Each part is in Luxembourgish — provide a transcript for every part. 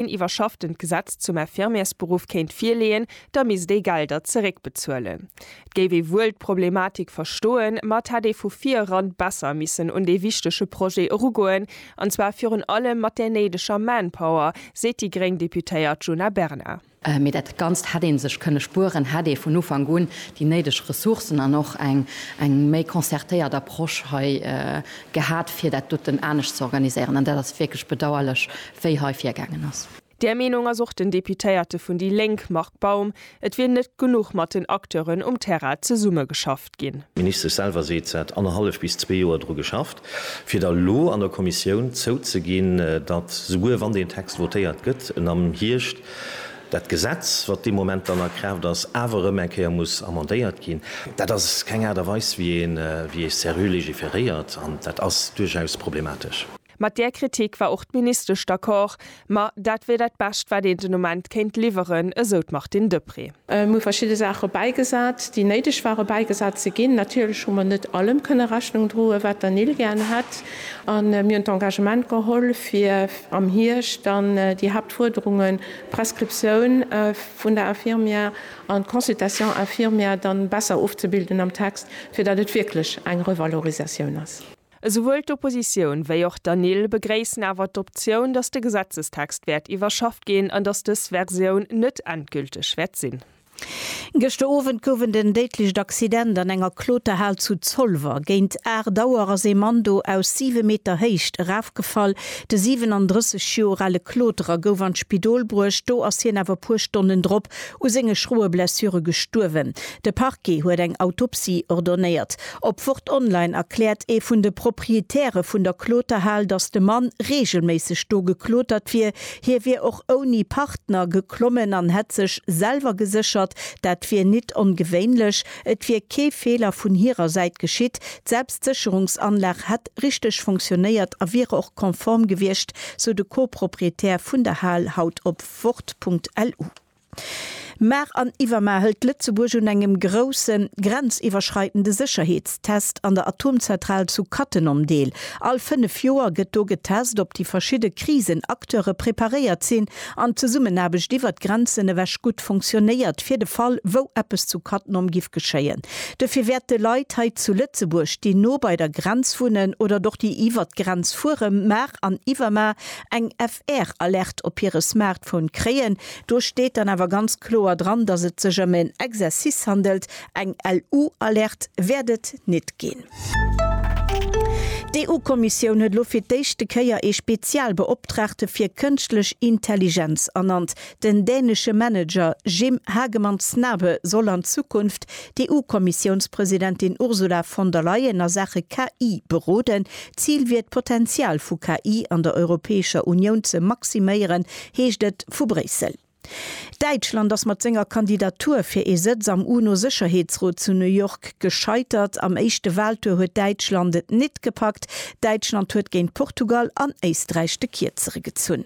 een iwwerschafftent Gesetz zum Infirmiersberuff kéint virleeën, da misst ee Gelder zeréckbezuelen. Et géif ee wuel d'Problematik verstoen, ma et hätt ee vu vir eran besser missen un dee wichtege Projet erugoen, an zwar virun allem mat där néideger Manpower, seet déi gréng Deputéiert Djuna Bernard. Mee dat Ganzt hätt ee sech kënne spueren, hätt ee vun Ufank un déi néideg Ressourcen an och eng méi concertéiert Approche hei gehat, fir dat doten anescht ze organiséieren. An dat ass wierklech bedauerlech, wéi hei virgaangen ass. Där Meenung ass och den Deputéierte vun déi Lénk Marc Baum. Et wier net genuch mat den Acteuren um Terrain zesummegeschafft ginn. D'Ministesch selwer seet, se hätt annerhallef bis zwee Joer dru geschafft, fir da lo an der Kommissioun zouzeginn, datt, souguer wann deen Text votéiert gëtt, en am Hierscht dat Gesetz, wat dee Moment dann a Kraaft ass, awer erëm eng Kéier muss amendéiert ginn. Dat ass keng Aart a Weis, wéi ee seriö legiferéiert, an dat ass duerchaus problematesch. Mat där Kritik war och d'Ministesch d'accord, ma dat wier dat Bescht, wat een den Ament kéint liwweren, esou d'Martine Deprez. Mir hu verschidde Saache bäigesat, déi néideg ware bäigesat ze ginn. Natierlech hu mer net allem kënne Rechnung droen, wat der Nil gär hätt. A mir hunn d'Engagement geholl, fir am Hierscht dann déi Haaptfuerderungen, d'Prescriptioun vun der Infirmière an d'Consultation infirmière, dann besser ofzebilden am Text, fir datt et wierklech eng Revalorisatioun ass. Esouwuel d'Oppositioun wéi och d'ANIL begréissen awer d'Optioun, datt de Gesetzestext wäert iwwerschafft ginn an datt dës Versioun net endgülteg wäert sinn. Gëschter Owend gouf en den déidlecht Accident an enger Kloterhal zu Zolwer. Géint 8 Auer ass ee Mann do aus 7 Meter Héicht erafgefall. De 37 Joer ale Kloterer gouf an d'Spidol bruecht, do ass hien awer e puer Stonnen drop u senge schroe Blessure gestuerwen. De Parquet huet eng Autopsie ordonnéiert. Op Wort Online erkläert ee vun de Proprietäre vun der Kloterhal, datt de Mann reegelméisseg do geklotert wier. Hie wier och ouni Partner geklommen an hätt sech selwer geséchert. Dat wier nit ongewéinlech. Et wier kee Feeler vun hirer Säit geschitt. D'Selbstsécherungsanlag hätt richteg funktionéiert a wiere och konform gewiescht, sou de Co-Proprietär vun der Hal haut op Wort.lu. Mar an iwwermar hëlt Lëtzebuerg un engem grousse grenziwwerschreitende Sécherheetstest an der Atomzentral zu Cattenom deel. All fënnef Joer gëtt do getest, ob déi verschidde Krisen-Acteure preparéiert sinn an d'Zesummenaarbecht iwwert d'Grenzen ewech gutt funktionéiert, fir de Fall, wou eppes zu Cattenom giff geschéien. Duerfir wäerte Leit hei zu Lëtzebuerg, déi no bei der Grenz wunnen oder och déi iwwert d'Grenz fuere, mar an iwwermar eng FR-Alerte op hire Smartphone kréien, Do steet dann awer ganz kloer dran, dass et sech ëm en Exercice handelt, eng LU-Alerte wäert et nit ginn. D'EU-Kommissioun huet elo fir d'éischte Kéier ee Spezialbeoptraagte fir Kënschtlech Intelligenz ernannt. Den dänesche Manager Jim Hagemann Snabe soll an Zukunft d'EU-Kommissiounspresidentin Ursula von der Leyen a Saache KI beroden. D'Zil wier d'Potenzial vu KI an der Europäescher Unioun ze maximéieren, heescht et vu Bréissel. Däitschland ass mat senger Kandidatur fir ee Sëtz am UNO-Sécherheetsrot zu New York gescheitert. Am éischte Waltour huet Däitschland et nit gepackt. Däitschland huet géint Portugal an Éisträich de Kierzere gezunn.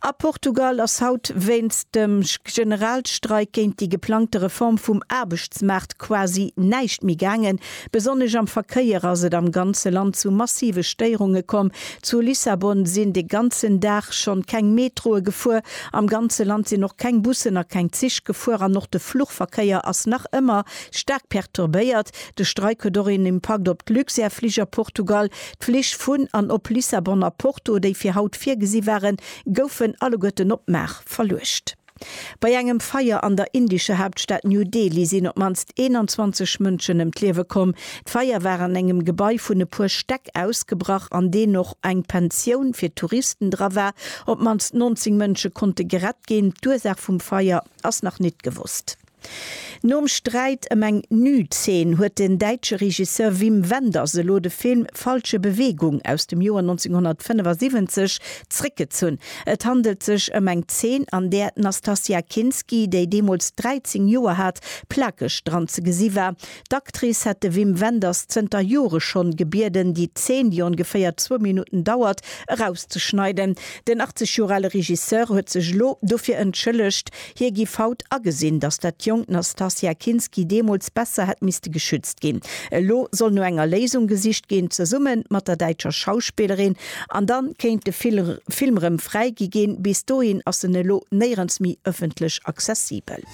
A Portugal ass haut wéinst dem Generalstreik géint déi geplangte Reform vum Aarbechtsmaart quasi näischt méi gaangen. Besonnesch am Verkéier ass et am ganze Land zu massive Stéierunge komm. Zu Lissabon sinn de ganzen Dag schonn keng Metroe gefuer. Am ganze Land sinn och keng Bussen a keng Zich gefuer an och de Fluchverkéier ass nach ëmmer staark perturbéiert. De Streik huet och een Impakt op d'Luxair-Flich a Portugal. D'Flich vun an op Lissabon a Porto, déi fir haut virgesi waren, goufen alleguerten op Mar verluecht. Bei engem Feier an der indescher Haaptstad New Delhi sinn op d'mannst 21 Mënschen ëm d'Liewe komm. D'Feier war an engem Gebai vun e puer Stäck ausgebrach, an deen och eng Pensioun fir Touristen dra war. Op d'mannst 19 Mënsche konnte gerett ginn. D'Ursaach vum Feier ass nach nit gewosst. Nom Sträit ëm eng Nüd-Zeen huet den däitsche Regisseur Wim Wenders elo de Film Falsche Bewegung aus dem Joer 1975 zréckgezunn. Et handelt sech ëm eng Zeen, an där d'Nastassja Kinski, déi deemools 13 Joer hat, plakeg dran ze gesi war, D'Actrice hätt de Wim Wenders zënter Jore schonn gebieden, déi Zeen, déi ongeféier zwou Minutten dauert, erauszeschneiden. Den 80 Joer ale Regisseur huet sech elo dofir entschëllegt. Hie giff haut agesinn, datt dat jonkt Nastassja Kinski deemools besser hätt misste geschützt ginn. Elo soll no enger Léisung gesicht ginn, zesumme mat der däitscher Schauspillerin. An da kéint de Film rëm fräigi ginn. Bis dohin ass en elo néierens méi ëffentlech accessibel.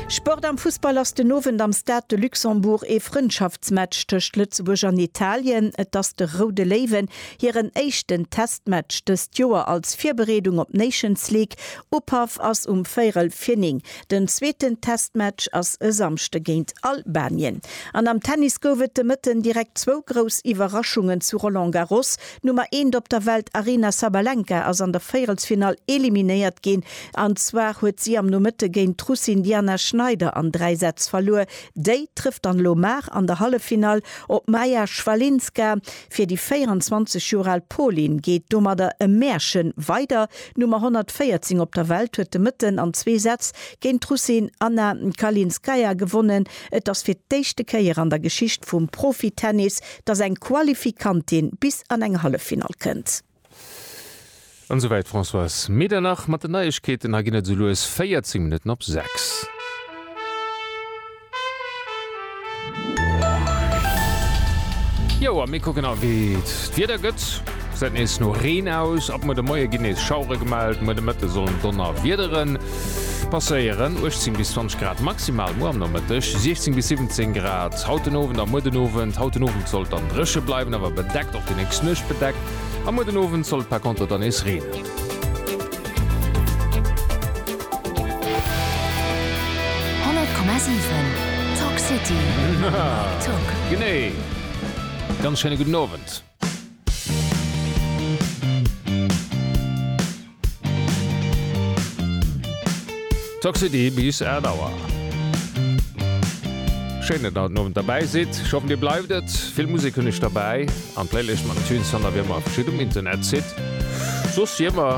Sport am Fussball ass den Owend am Stade de Luxembourg ee Frëndschaftsmatch tëscht Lëtzebuerg an Italien. Et ass de Roude Léiwen hiren éischten Testmatch dëst Joer als Virbereedung op d'Nations League. Upaff ass um véierel vir 9. Den zweeten Testmatch ass e Samschde géint Albanien. An am Tennis gouf et de Mëtten direkt zwou grouss Iwwerraschungen zu Roland Garros, D'Nummer eent op der Welt Aryna Sabalenka ass an der Véierelsfinall eliminéiert ginn. An zwar huet si am Nomëtte géint d'Russin Diana Schneider an dräi Sätz verluer. Déi trëfft dann elo mar an der Halleffinall op d'Maja Schwalinska. Fir déi 24 Joer al Polin geet domadder e Märche weider. D'Nummer 114 op der Welt huet de Mëtten an zwee Sätz géint d'Russin Anna Kalinskaya gewonnen. Et ass fir d'éischte Kéier an der Geschicht vum Profitennis, dass eng Qualifikantin bis an eng Halleffinall kënnt. An esou wäit Françoise Medernach mat den Neiegkeeten. Hei ginn et esou lues 14 Minutten op 6. Jo a mir kucken nach wéi et d'Wieder gëtt. Gesäit nees no Reen aus. Ab muer de Moie ginn nees Schauere gemellt. Muer de Mëtte sollen Donnerwiederen Passéieren 18 bis 20 Grad maximal muer am Nomëtteg, 16 bis 17 Grad haut den Owend a muer den Owend. Haut den Owend sollt dann dréche bleiwen, awer bedeckt, och déi nächst Nuecht bedeckt a muer den Owend soll et par Konter dann nees reenen. Genee, ganz schéine gudden Owend. Toxity bis 8 Auer. Schéin dat der haut Owend derbäi sidd. Ech hoffen dir bleift et. Vill Musek hunn ech derbäi an d'Playlist mam Tunes fannt der wéi ëmmer verschidde um Internet. Sidd soss wéi ëmmer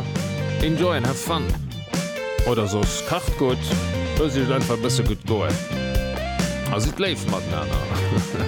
enjoy and have fun oder soss kacht gutt, loosst iech et einfach e bësse gutt goen a sidd léif matenaner.